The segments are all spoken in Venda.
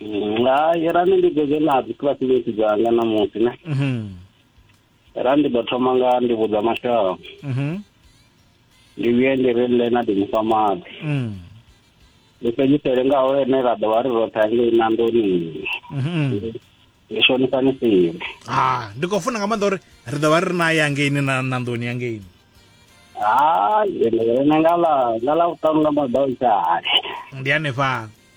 Mm, hai ra ndi dzedze na dzi classmate dzanga namusi ne mhm ra ndi ḓo thoma nga ndi vhudza mashaka mhm ndi vhuye ndi ri ḽe na ndi mufha maḓi mm ndi fhedzisele ngaho ene ra ḓo vha ri roṱhe angei na ndoni mhm ndi shonisani sivhe ha ndi khou funa nga maanḓa uri ri ḓo vha ri naye angeini na na nḓuni angeini hai ende ene nga ḽa nga ḽa vhuṱanu nga maḓausa hai ndi hanefha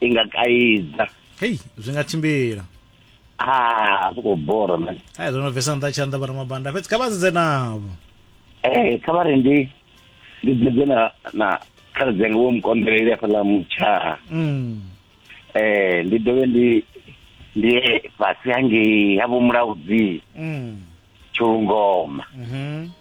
i nga kaidza hei zwi nga tshimbila ah zwi khou bora man hai zwo no bvesa nṱha tshanḓa vhara mabanda fhedzi kha vha sedze navho ee kha vha ri ndi ndi dzedze na na khaladzi anga wo mukonḓeleli afhaḽa mutshaha mm. ee ndi dovhe ndi ndi fhasi hangei ha vho mulaudzi mm. tshulungoma mm -hmm.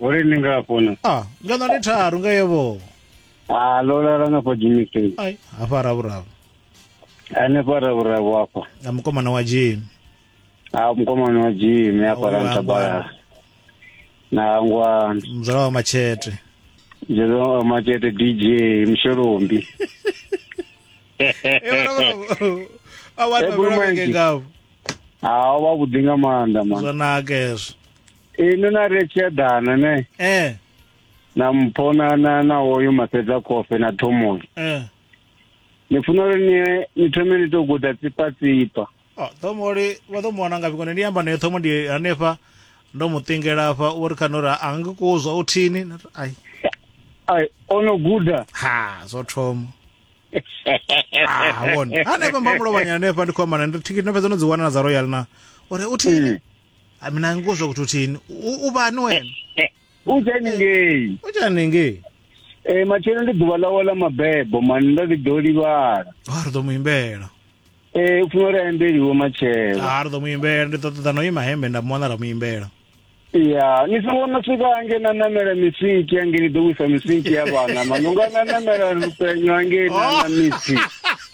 uri ni nga fona ah ngana ndi tharu nga yebo a ndo lala nga pa jimmy state ai hafha ravhuravu hanefha ravhuravu hafha na mukomana wa jim a mukomana wa jimmy hafha Ngwangwa. rantabalala na ngwani mzala wa machete zvezwa machete dj mshelombi awanavhurake ngavo hawo vavhuḓi nga maanḓa man zwanaka hezvo inwi na ri tshi eḓana ne eh na mpho na na na hoyu masedza kofe na thomozi eh ni funa uri ni ni thome ni to guda tsipa tsipa Oh, thomo uri vha ḓo muwana ngafhi kone ndi amba naye thomo ndi hanefha ndo mu ṱingela afha uri khana uri a ngi kuzwa u thini Na ri, ai ai ono guda ha zwo thoma ah wona hanefha mbamulovhanya hanefha ndi khou amba naye ndi thikhithi ndo fhedza no dzi wana na dza royal na uri u thini Hayi mina ngikuzwa ukuthi uthini. U- Ubani wena? unjani ngei Unjani ngi? e matshelo ndi ḓuvha ḽawe ḽa mabebo mani ndo ḓi ḓo livhala Ha ri ḓo mu imbela. e u funa uri a imbeliwe matshelo Ha ri ḓo mu imbela ndi ḓo ṱoḓa no ima hembe nda mu wana ra mu imbela. ya ni songo no swika ange na namela misiki ange ni ḓo wisa misiki ya vhana mani unga na namela lupenyo ange na na misi